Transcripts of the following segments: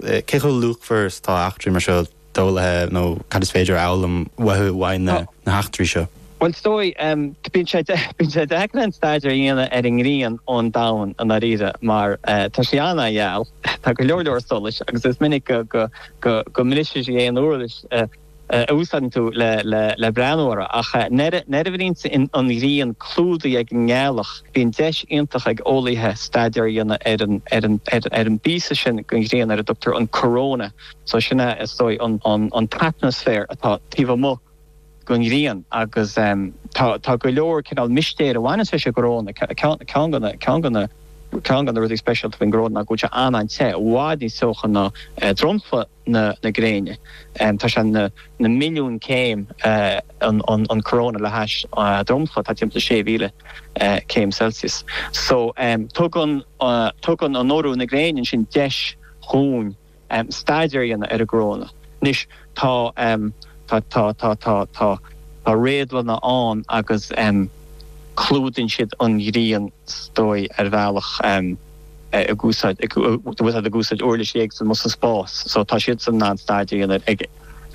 Cé chomh luachmhar is atá eachtraí mar seo d'eolaithe nó cad is féidir a fhoghlaim uathu le linn na n-eachtraí seo? Bhuel, is dóigh, bíonn sé deacair aon staidéar a dhéanamh ar an ngrian ón domhan i ndáiríre mar tá sí an-gheal, tá go leor leor solais agus is minic go mbriseann sí aon uirlis a úsáideann tú le breathnú uirthi, ach nuair a bhíonn an ghrian clúdaithe ag an ngealach, bíonn deis iontach ag eolaithe staidéar a dhéanamh ar an bpíosa sin den ghrian ar a dtugtar an coróna, so sin é is dóigh an t-atmaisféar atá taobh amuigh den ghrian, agus tá go leor cineál mistéir a bhaineann leis an gcoróna, ceann de na rudaí speisialta faoin gcoróna ná go bhfuil sé an-an-te, i bhfad níos teocha ná dromchla. na gréine. Tá sé na milliúin céim, an coróna le hais dromchla atá timpeall 6,000 céim Celsius. So, tugann tugann an urú na gréine ansin deis dhúinn staidéar a dhéanamh ar an gcoróna. Anois, tá réadlanna ann agus clúdaíonn siad an ghrian is dóigh ar bhealach. ag úsáid ag úsáid uirlisí éagsúla sa spás so tá siadsan in ann staidéar a dhéanamh ag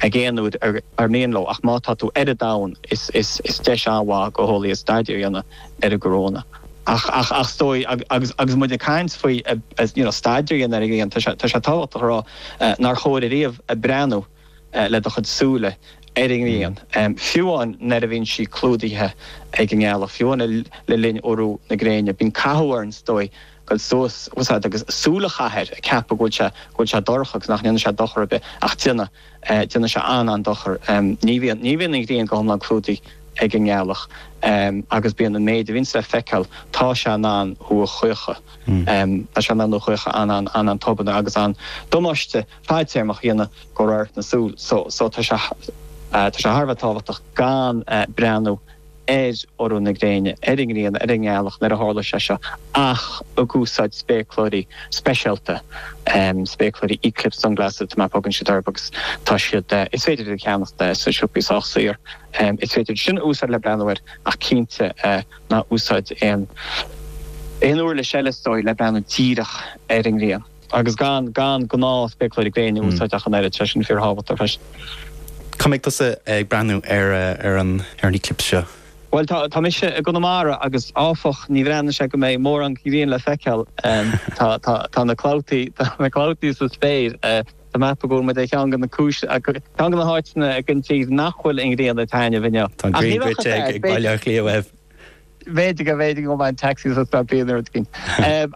ag aon uair ar ar mian leo ach má tá tú ar an domhan is is is deis an-mhaith dho eolaithe staidéar a dhéanamh ar an gcoróna ach ach ach is dóigh ag agus agus muid ag caint faoi you know staidéar a dhéanamh ar an ngrian tá sé tá sé tábhachtach a rá nár chóir duit ariamh breathnú le do chuid súile ar an ngrian, fiú amháin nuair a bhíonn sí clúdaithe ag an ngealach, fiú amháin le linn urú na gréine. Bíonn cathú orainn, is dóigh, dul amach agus súil a chaitheamh air, ag ceapadh go bhfuil sé dorcha agus nach ndéanfaidh sé dochar ar bith, ach déanann sé an-an-dochar. Ní bhíonn an ghrian go hiomlán clúdaithe ag an ngealach agus bíonn an méid a bhíonns le feiceáil, tá sé in ann thú a chaochadh. Tá sé in ann thú a chaochadh an-an-an-an-tobann agus an-damáiste. fadtéarmach a dhéanamh dho radharc na súl so, tá sé thar a bheith tábhachtach gan breathnú ar urú na gréine, ar an ngrian, ar an ngealach nuair a tharlaíonn sé seo ach ag úsáid spéacláirí speisialta, spéacláirí eclipse sunglasses atá mar a thugann siad orthu agus tá siad, is féidir iad a cheannacht sna siopaí sách saor, is féidir sin a úsáid le breathnú air ach cinnte ná úsáid aon uirlis eile is dóigh le breathnú díreach ar an ngrian. agus gan gnáth-spéacláirí gréine a úsáid ach an oiread, tá sé sin fíorthábhachtach freisin. Cá mbeidh tusa ag breathnú ar an eclipse seo? Bhuel, tá mise i gConamara agus ar an drochuair, ní bhreathnaíonn sé go mbeidh mórán grian le feiceáil. Tá na clabhtaí sa spéir. Tá mé ag ceapadh go bhfuil muid i gceann de na cúis, ceann de na háiteanna den tír nach bhfuil an ghrian ag taitneamh inniu. Tá an ghrian goidte ag Baile Átha Cliath uaibh. bhféadfadh, a bhféadfadh go mbeinn taxis a stop féin rud éigin.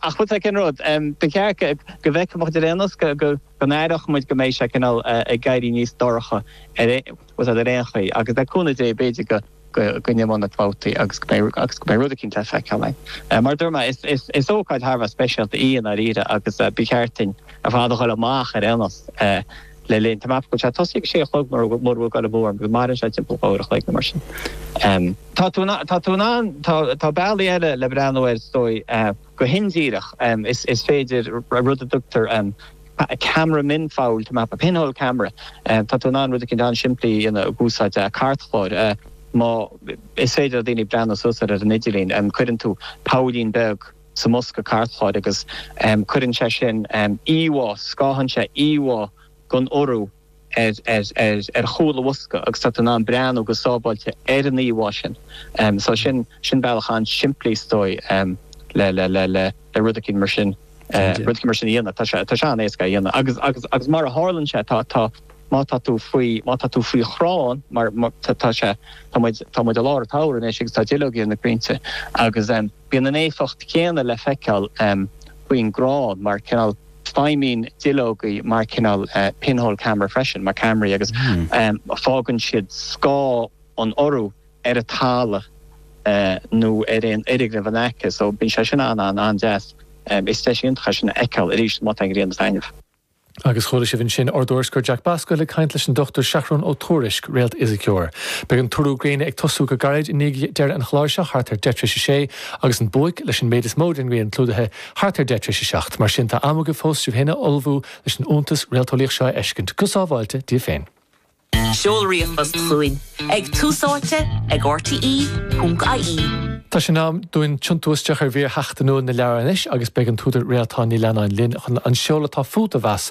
Ach bhfuil aon rud. Ba cheart go go bhfeicfeadh muid ar aon nós go go go n-aireodh muid go mbeidh sé cineál ag éirí níos dorcha outside ar aon chaoi agus le cúnamh Dé b'fhéidir go go go n-imeodh na clabhtaí agus go mbeidh agus go mbeidh rud éicint le feiceáil ann. Mar a dúirt mé, is is is ócáid thar a bheith speisialta í i ndáiríre agus ba cheart dúinn ar fad a dhul amach ar aon nós. le linn tá mé ag ceapadh go bhfuil sé ag tosú ag sé a chlog mura mura bhfuil dul amú orm agus maireann sé timpeall uair an chloig nó mar sin. Em. Tá tú in ann tá tú in ann tá tá bealaí eile le breathnú air is dóigh eh go hindíreach em is is féidir ra rud a dtugtar em ceamara mionphoill tá mé ag ceapadh pinhole camera em tá tú in ann rud éicint an-simplí a dhéanamh ag úsáid eh cairtchlár eh má is féidir le daoine breathnú suas ar ar an idirlíon em cuireann tú poillín beag sa mbosca cairtchláir agus cuireann sé sin íomhá, scáthann sé íomhá den urú ar chúl an bhosca agus tá tú in ann breathnú go sábháilte ar an íomhá sin. So sin bealach an-simplí is dóigh le rud éicint mar sin a dhéanamh. Tá sé an-éasca é a dhéanamh agus mar a tharlann sé má tá tú faoi, má tá tú faoi chrann mar tá sé, tá muid i lár an tsamhraidh anois agus tá duilleoga ar na crainnte agus, Bíonn an éifeacht chéanna le feiceáil faoin gcrann mar cineál feidhmíonn na duilleogaí mar chineál pinhole camera freisin, mar ceamaraí, agus fágann siad scáth an urú ar an talamh nó ar aon fhoirgneamh in aice so bíonn sé sin an-an-an-deas. Is deis iontach é sin a fheiceáil arís má tá an ghrian ag taitneamh. Agus chuala sibh ansin ár dtuairisceoir Jack Bascomhill ag caint leis an Dr Seathrún Ó Tuairisg, réaltfhisiceoir. Beidh an t-urú gréine ag tosú go gairid i ndiaidh deireadh an chláir seo, thart ar deich tar éis a sé, agus an buaic, leis an méid is mó den ngrian clúdaithe, thart ar deich tar éis a seacht. Mar sin, tá am agaibh fós sibh féin a ullmhú leis an iontas réalteolaíoch seo a fheiscint, go sábháilte, daoibh féin. Seol ríomhphost chugainn ag Tús Áite ag RTÉ.ie. Tá sé in am dúinn tiontú isteach ar mhír sheachtainiúil na leabhar anois agus beidh an t-údar Réaltán Ní Leannáin linn chun an seol atá fút a mheas.